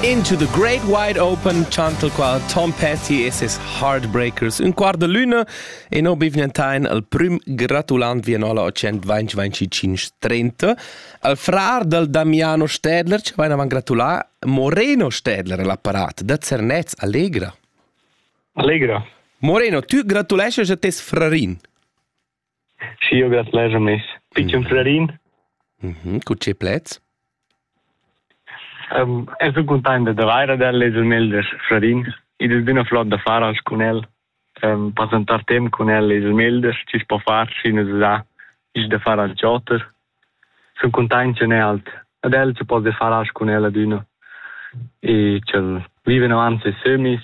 Into the Great Wide Open, chantal qua Tom Petty e ses Heartbreakers. Un quart de luna e no bivnentain al prim gratulant Vienola 125-30. Al frar del Damiano Stedler, ci vain avant gratulà, Moreno Stedler l'apparat, da Zernez, Allegra. Allegra. Moreno, tu gratulesces a tes frarin. Schi'eu grat leger meis pitschen frarin. Cu che pleds? Um, eu sun cuntaint da vair ad el e sun el da frarin. Id es üna flot d'affarats cun el. Um, passentar temp cun el es il melder, chi's po far, schi nu s'sa. I's da far al choter. Sun cuntaint ch'el n'è alt. Ad el che poss far cun el adüna. E ch'el vive in avanti e sömis.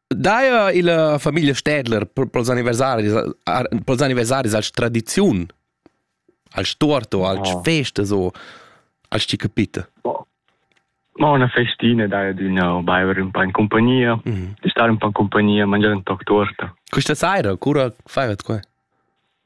Daja illa famiglia Städler pels anniversaris pels anniversaris als tradiziun als torto, als oh. feste so, als ti capite. Oh. Ma una festina dai adüna o baiver un po in compagnia, mm -hmm. stare un po in compagnia, mangiare un toc torta. Questa sera cura fai quai?